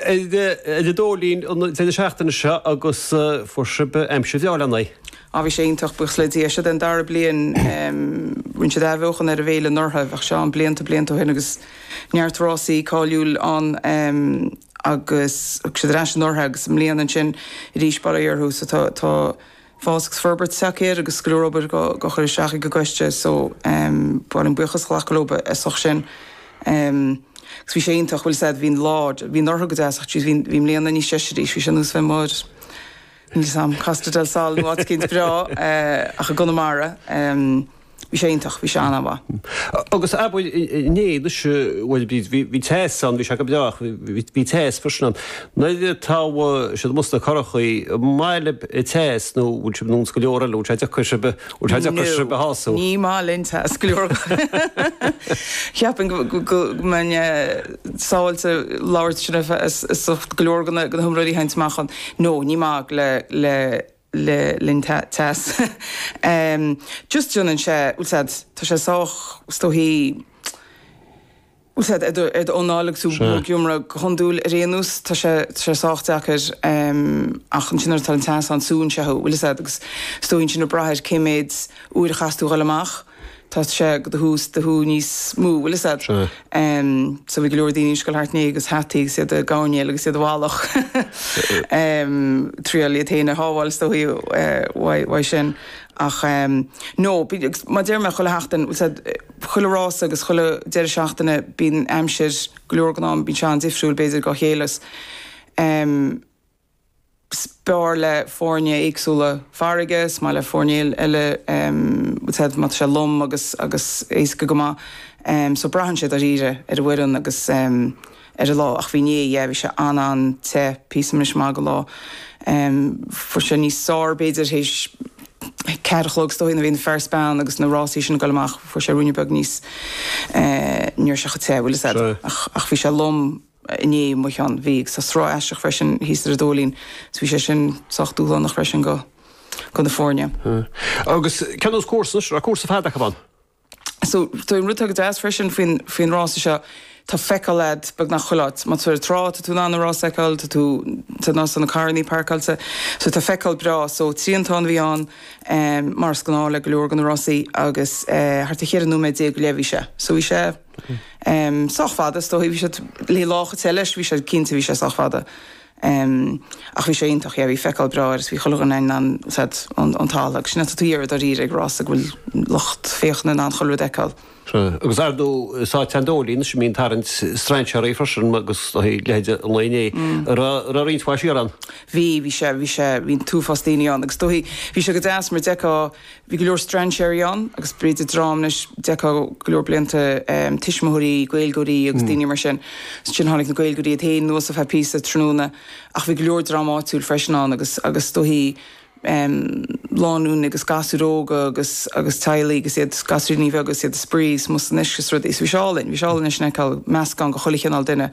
Ag an Dóilín an deireadh seachtaine seo agus fuair sibh aimsir bhreá lena aghaidh. Á, bhí sé iontach, buíochas le Dia. Seo é an dara bliain, rinne siad athbheochan ar an bhféile anuraidh, bhíodh sé ann blianta, blianta ó shin agus neart rásaí cáiliúil ann agus thug siad ar ais anuraidh agus i mbliana ansin arís, bail ó Dhia orthu so tá, tá. fás agus forbairt tagtha air agus go leor obair dhá chur isteach ag an gcoiste so em ba mhaith liom buíochas a ghlacadh leo as ucht sin em agus bhí sé iontach bhfuil fhios a'd bhí an lá bhí anuraidh go deas ach tríd bhí an bhí i mbliana níos deise arís bhí sé ar nós bheith amuigh níl fhios a'm Costa del Sol nó áit éicint breá eh ach i gConamara em Bhí sé iontach, bhí sé an-mhaith. Agus ab bhfuil, inné, anois, bhuel, bhí, bhí teas ann, bhí sé go breá ach bhí, bhí teas freisin ann. Nuair atá sibh amuigh sna curachaí, an maith libh teas nó bhfuil sibh ar nós go leor eile, bhfuil sé deacair sibh, bhfuil sé deacair sibh a shású? No, ní maith linn teas go leor. Cheapfainn go, go, go mbeinn sábháilte labhairt sin ar feadh, go leor de na, de na hiomróirí a thaganns amach ann. No, ní maith le, le. le linn teas. just déanann sé, bhfuil fhios a'd, tá sé sách, is dóichí, bhfuil fhios a'd, ar do, ar do anáil agus tú Sea. ag iomramh. Go hiondúil ar aon nós tá sé, tá sé sách deacair ach ansin nuair atá an teas ann súnn sé thú, bhfuil fhios a'd agus is dóichí ansin ag brath ar cé mhéad uair a chaitheas tú a dhul amach. Tá sé go do shú, do shú níos mó, bhfuil fhios a'd. So bhí go leor daoine ag siúl thart inné agus hataí agus iad dhá gcoveráil agus iad dhá bhfalach. Triáil iad fhéin a shábháil is dóichí uaidh sin. Ach no, bíonn, agus mar deir mé chuile sheachtain, bhfuil fhios a'd, chuile rása agus chuile deireadh seachtaine bíonn aimsir, go leor den am bíonn sé an-difriúil b'fhéidir dá chéile. is fearr le foirne éagsúla farraige, is maith le foirne eile bhfuil fhios a'd má tá sé lom agus agus éasca go maith so braitheann sé dáiríre ar an bhfoireann agus ar an lá ach bhí inné yeah bhí sé an-an-te píosa anois maith den lá fuair sé níos fuaire b'fhéidir théis ceathair a chlog is dóigh nó bhí na fear 's bean agus na rásaí sin ag goil amach fuair sé ruainne beag níos eh ní raibh sé chomh te bhfuil fhios a'd ach ach bhí sé lom inné amach ann. Bhí sruth aisteach freisin thíos ar an Dóilín, so bhí sé sin sách dúshlánach freisin go go na foirne. Agus cén nós cúrsa, anois, raibh cúrsa fada acu ann? So, tá an rud atá go deas freisin faoin faoin rása seo, tá feiceáil agat beagnach chuile áit. Má tá tú ar an trá, tá tú in ann na rása a fheiceáil, tá tú sa nós tá na carrannaí páirceáilte, so tá feiceáil breá. So, triantán a bhí ann, mar is gnáth le go leor go na rásaí agus thart ar cheithre nóiméad déag go leith a bhí sé, so bhí sé. sách fada, is dóigh. Bhí sé ina lá te, bhí sé, cinnte bhí sé sách fada. Ach bhí sé iontach, yeah, bhí feiceáil bhreá air is bhí chuile dhuine in ann, tá's agat, ón talamh agus sin atá tú ag iarraidh dáiríre ag rás go bhfuil lucht féachana in ann chuile rud a fheiceáil. Sea. Agus ar ndóigh an Dóilín is bíonn sé ag tarraingt strainséirí freisin agus a leithéid an lae inné. A raibh, a raibh roinnt mhaith thiar ann? Bhí, bhí sé, bhí sé, bhí an t-uafás daoine ann agus is dóigh, bhí sé go deas mar d'fheiceá, Bhí go leor strainséirí ann agus b'fhéidir dream anois, d'fheicfeá go leor blianta, tuismitheoirí, Gaeilgeoirí agus daoine mar sin. Ansin tháinig na Gaeilgeoirí iad féin anuas ar feadh píosa, tráthnóna, ach bhí go leor dream áitiúil freisin ann agus, agus is dóichí, lánúin agus gasúir óga agus, agus teaghlaigh agus iad, gasúiríní bheaga agus iad ag spraoi is mar sin is rudaí. So bhí sé álainn, bhí sé álainn anois a fheiceáil meascán de chuile chineál duine.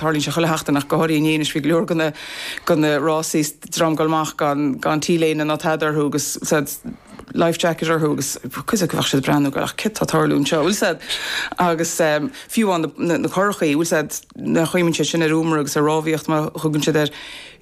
Tarlaíonn sé chuile sheachtain, ach go háirithe inné, anois bhí go leor de, de na rásaí is dream ag goil amach gan T-léine ná tada orthu agus tá's agat life jacket orthu agus cuid acu bheadh siad ag breathnú, ag rá ach céard tá ag tarlú anseo, bhfuil 's agat agus fiú amháin na curachaí, bhfuil 's agat, nach gcuimhníonn siad sin ar iomramh agus ar rámhaíocht mar a thugann siad air.